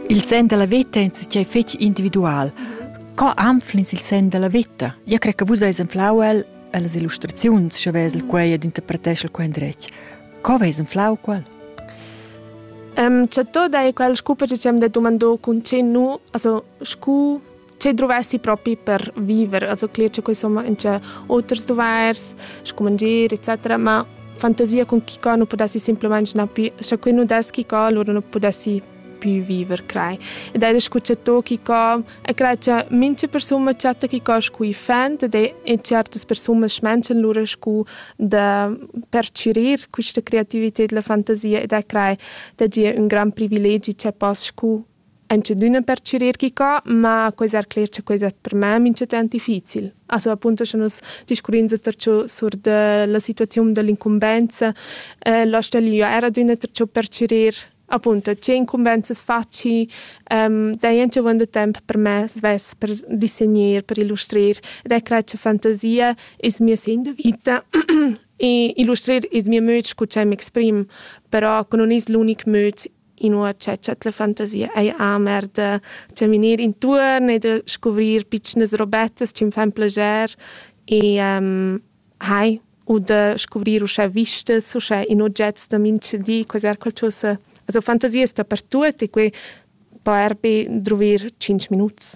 Il sen dalla veta è tgei fetg individual. Co anflins il sen dalla veta? Io cre che vus veis enflau el las illustraziuns, sche vesel quei ed interpretesel quei endretg. Co veis enflau quel? Um, cioè, tot è quel scupa che ci abbiamo detto mandò con ce nu, also scu che dovessi propi per viver, also cler che insomma in c'è outers dovers, scomangere etc. Ma fantasia con chi co non potessi semplicemente na più, se qui non deschi co allora non potessi più viver, crei. Ed è escucciato chi co e crei che mince persone chatta chi co scui fent ed è in certe persone schmenchen lura scu da percirir questa creatività e la fantasia ed è crei da gia un gran privilegi che poss scu Entschedüna per chürir que co, ma quai s'ha cler cha quai es per me minchatant difficil. A so apunto scha nus discurrins dapertü sur da la situaziun da l'incumbenza, la stöglia eir adüna dapertü perchürir. Apunto, tge incumbenzas faci, daja dovant da temp per me svess per dissegner, per illustrir ed eu crai cha fantasia es mia segn da vita e illustrir es mia möd scu cha ün m'exprim, però que nun es l'unic möd inua cha dschet la fantasia ei amer da chaminir intuorn e da scuvrir pitschnas robettas chi'm fan plager e ehm hai u da scuvrir uschè vistas, uschè in ogets da mintgadi, quaiser qualchosa. Also fantasias dapertuot e quai po er be druvir tschinch minuts.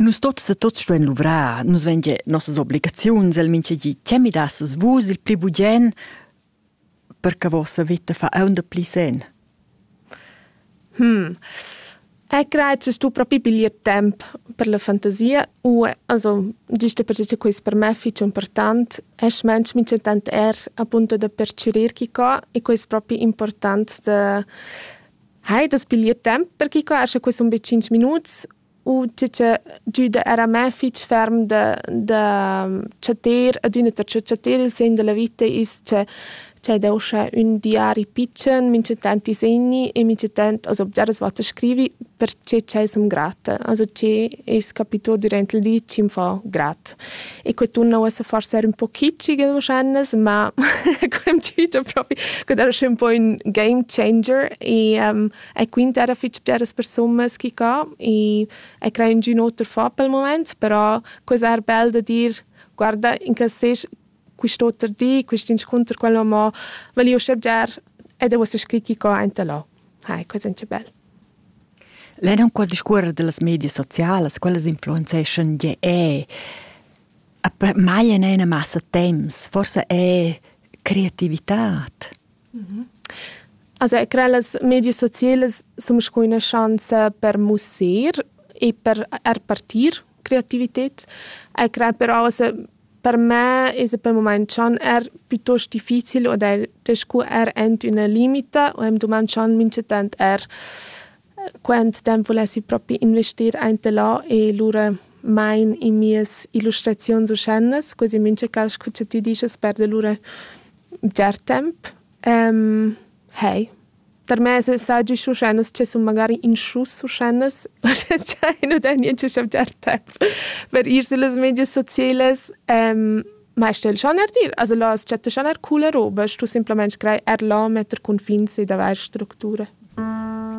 Nus tots e tots stuein luvrar, nus vegn gie nossas obligaziuns, el mincha gi, che mi dasses vus il pli bugen per che vossa veta fa aunc pli sen. Hm. È grazes tu propi piglier temp per la fantasia u also giusto per che quest per me fich important es mensch min tant er appunto da percürir chi co e quest propi important da hai das piglier temp per chi quascha quest un be 5 minuts u tge che giuda era me fitg ferm da, da chatter ad üna ta chatter il segn della vita is che c'è da uscia un diari piccen, mi c'è tanti segni e mi c'è tant as obgiaras wat scrivi perché c'è som grata, also che es capito durante il di ci fa grat. e que tunna uossa forsa er un po kitschigel wahrscheinlich, ma quem tüta propi, que era schön un po ün game changer e um, e quint era fich bgeras persunas chi ca e e crein giün oter fà pel mumaint, però quella era bel da dir guarda in cas sest quist'oter di, quist'inscunter quel ho mo valieu scher bger ed eu uossa scrit chi ca aint da là. Hai, quella è bel. Lein aunc qua discuorer dallas medias socialas, quellas influenzeschan gie eh. A per mai en ina massa temps, forsa è creativitad. Mm-hmm. Also ich credo che le medie sociali sono una chance per musser e per repartire creatività. Ich credo però, also Per me es a pel mumaint dschan eir piuttost difficil ed el scu er ant üna limita u am dumand dschan minchatant eir quant temp vulessi propi investir aint e là e lura main in mias illustraziuns uschènas, quasi mincha cas scu cha tü dischast perda lura bger temp. Hey. Tarmess saggi schuschennas che sun magari in schus schuschennas, cha i nu dà niencha chavgiar temp per ir süllas medias socielas. ma sta'l schaner dir, also là as chatta schaner cula roba, stu simplamaing scrair er là, metter cunfins ed avair structura.